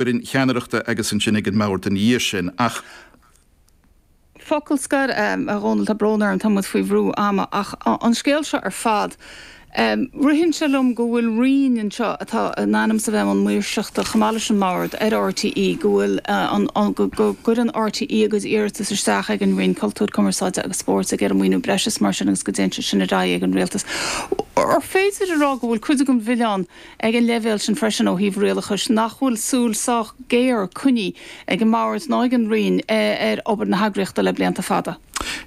fhoireann cheannaireachta agus ansin ag an mbord ina dhiaidh sin ach. Focal scoir, a Dhónaill, tá brón orm, tá muid faoi bhrú ama, ach an scéal seo ar fad, ritheann sé liom go bhfuil roinn anseo atá in ainm is a bheith i mbun maoirseachta, chomh maith leis an mbord, ar RTÉ, go bhfuil an, go gcuireann RTÉ a gcuid iarratas isteach ag an Roinn Cultúir, Cumarsáide agus Spóirt ag iarraidh maoiniú breise is mar sin agus go dtéann sé sin ar aghaidh ag an Rialtas. Ar féidir a rá go bhfuil cuid den mhilleán, Ag an leibhéal sin freisin, ó thaobh rialachais, nach bhfuil súil sách géar coinnithe ag an mbord ná ag an Roinn ar obair na heagraíochta le blianta fada?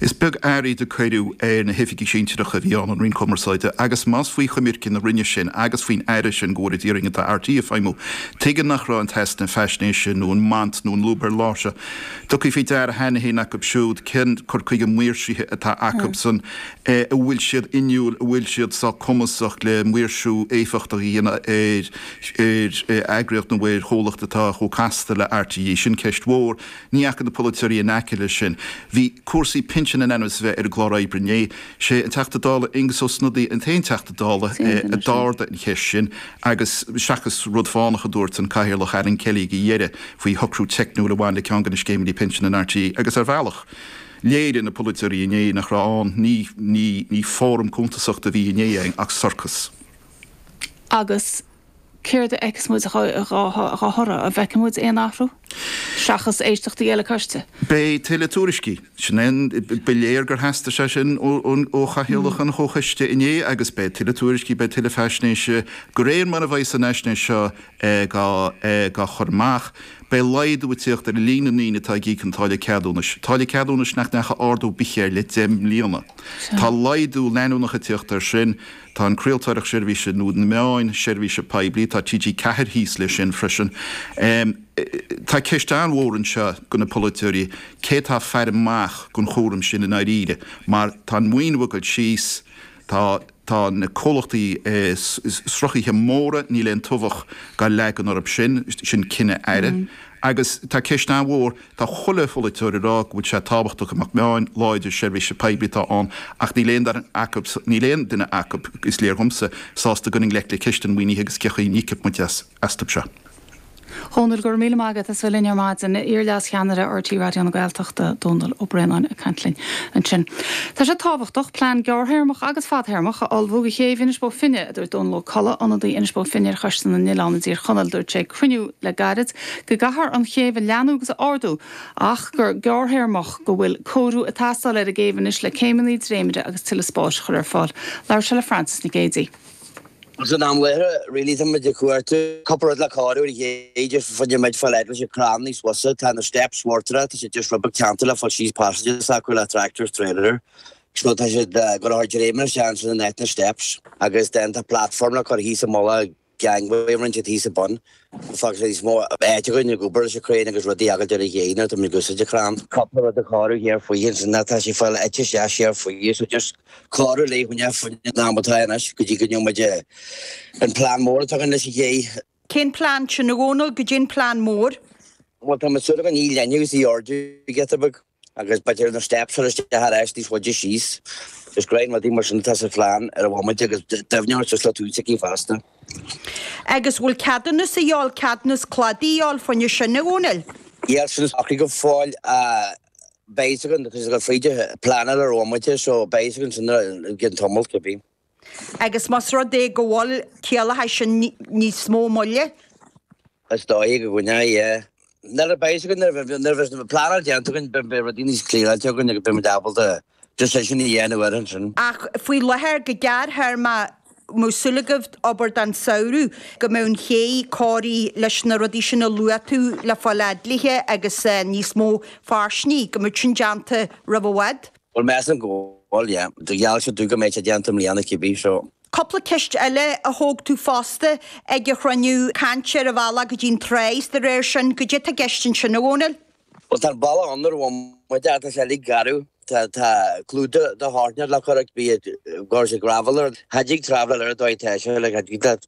Is beag aird a cuireadh ar na hoifigigh sinsearacha a bhí ann, an Roinn Cumarsáide, agus más faoi choimirce na Roinne sin agus faoin Aire sin go bhfuil, ar ndóigh, atá RTÉ ag feidhmiú, tuige nach raibh an t-easnamh faisnéise nó an mbaint nó an lúb ar lár seo tugtha faoi deara cheana féin acu siúd cén cur chuige maoirsithe atá acu san é an bhfuil siad inniúil, an bhfuil siad sách cumasach le maoirsiú éifeachtach a dhéanamh ar eagraíocht nó ar chomhlacht atá chomh casta le RTÉ. Sin ceist mhór. Ní dheachaigh na polaiteoirí in aice leis sin. Bhí cúrsaí pinsin in ainm is a bheith ar an gclár oibre inné. Sé an Teachta Dála Aengus Ó Snodaigh an t-aon Teachta Dála a d'ardaigh an cheist sin agus seachas rud fánach a dúirt an Cathaoirleach Alan Kelly ag a dheireadh faoi shocrú teicniúil a bhain le ceann de na scéimeanna pinsin in RTÉ, agus ar bhealach. Léirigh na polaiteoirí inné nach raibh ann ní ní ní fóram cuntasachta a bhí inné ann ach sorcas. Agus céard a fheiceas muid dhá thoradh? An bhfeicfidh muid aon athrú? Seachas éisteachtaí eile coiste? Beidh tuilleadh tuairiscí. Sin é an, ba léir gur theastaigh sé sin ó chathaoirleach an chomhchoiste inné agus beidh tuilleadh tuairiscí, beidh tuilleadh faisnéise de réir mar a bheidh an fhaisnéis seo Dhá chur amach, beidh laghdú ag teacht ar líon na ndaoine atá ag íoc an táille ceadúnais, táille ceadúnais nach ndeachaigh ardú ar bith air le deich mbliana. Tá laghdú leanúnach ag teacht ar sin. Tá an chraoltóireacht seirbhíse nó na meáin seirbhíse poiblí, tá TG4 thíos le sin freisin. Tá ceist an-mhór anseo go na polaiteoirí, cé atá ag faire amach don chúram sin i ndáiríre, mar tá an maoiniú ag dul síos, tá. Tá na comhlachtaí sruthaithe móra, níl aon tobhach dá leagan orthu sin, sin cinneadh aire. Agus tá ceist an-mhór, tá chuile pholaiteoir ag rá go bhfuil sé tábhachtach go mbeadh meáin láidre seirbhíse poiblí ann ach níl aon duine acu, is léir dhomsa, sásta dul i ngleic le ceist an mhaoinithe agus cé chaoi a n-íocfaidh muid as. astu seo. A Dhónaill, go raibh míle maith agat. as ucht a bheith linn ar maidin iar-leascheannaire RTÉ Raidió na Gaeltachta, Dónall Ó Braonáin, ag caint linn ansin. Tá sé tábhachtach plean gearrthéarmach agus fadthéarmach a ullmhú do chéibh Inis Bó Finne, a dúirt Dónall Ó Colla, ionadaí Inis Bó Finne ar Choiste na nOileán i dTír Chonaill. Dúirt sé ag cruinniú le gairid go gcaithfear an chéibh a leathnú agus a ardú ach go gearrthéarmach go bhfuil cóiriú ag teastáil ar an gcéibh anois le céimeanna dréimire agus tuilleadh spáis a chur ar fáil. Labhair sé le Frances Nic Géadaigh. San am i láthair, really, tá muid ag cuartú cúpla rud le cóiriú ar an chéidh de chuid an méid foil eaglais, crann níos fusa, tá na steps mhortara, tá siad just rud beag teannta le fáil síos passages acu le tractor is trailer, so tá siad ag cur dréimire isteach in áit na steps agus then tá platform le cur thíos i mullach gangway ansin thíos i bun. Fágfaidh sé níos mó áit againn ag obair leis an chrann agus rudaí a fhágáilt ar an chéidh, tá muid ag úsáid an chrainn. Cúpla rud a chóiriú thiar faoi thíos anois, tá sí ag fáil ite isteach thiar faoi is is cóiriú léi faoin am fuinnimh in am atá anois go dtí go ndéanfaidh muid an plean mór atá againn leis an gcéidh. Cén plean sin, a Dhónaill, goidé an plean mór? Bhuel, tá muid súil againn í a leathnú agus í a ardú giota beag. Agus beidh na steps ar ais arís níos faide síos. Is go leor rudaí mar sin atá sa phlean ar an bhomaite agus doimhniú suas le taobh na céidh fosta. Agus bhfuil ceadúnas a dhíobháil, ceadúnas cladaigh a dhíobháil fá choinne sin, a Dhónaill? Níl 's acu go fóill, beidh 's againn, agus fríd an phlean ar an bhomaite so beidh 's againn sin i gcionn tamaill cibé. Agus más rud é go bhfuil, gciallódh sin níos mó moille? Is dóigh go gciallódh, yeah. Nuair a bheidh 's againn, nuair a bheidh, nuair a bheidh an phleanáil déanta againn, beidh, beidh rudaí níos clearáilte againn agus beidh muid ábalta decision a dhéanamh air ansin. Ach faoi láthair, go gearrthéarmach, mbeadh súil agaibh, obair don samhradh, go mbeadh an chéidh cóirithe leis na rudaí sin a luaigh tú le fáil adlithe agus níos mó fairsingí, go mbeadh sin déanta roimh i bhfad? Bhuel, measaim go bhfuil, yeah. Gheall siad domh go mbeidh sé déanta i mbliana cibé, so. Cúpla ceist eile a thóg tú fosta ag an chruinniú, caint ar an bhealach go dtí an trá is dá réir sin. Goidé atá i gceist ansin, a Dhomhnaill? Bhuel, tá an bealach ann ar an bhomaite ach tá sé uilig garbh. Tá tá clúdach de shártneáil le cur air bíodh gur is ag gravel air. Cha dtig traveláil air an dóigh atá sé like cha dtig leat.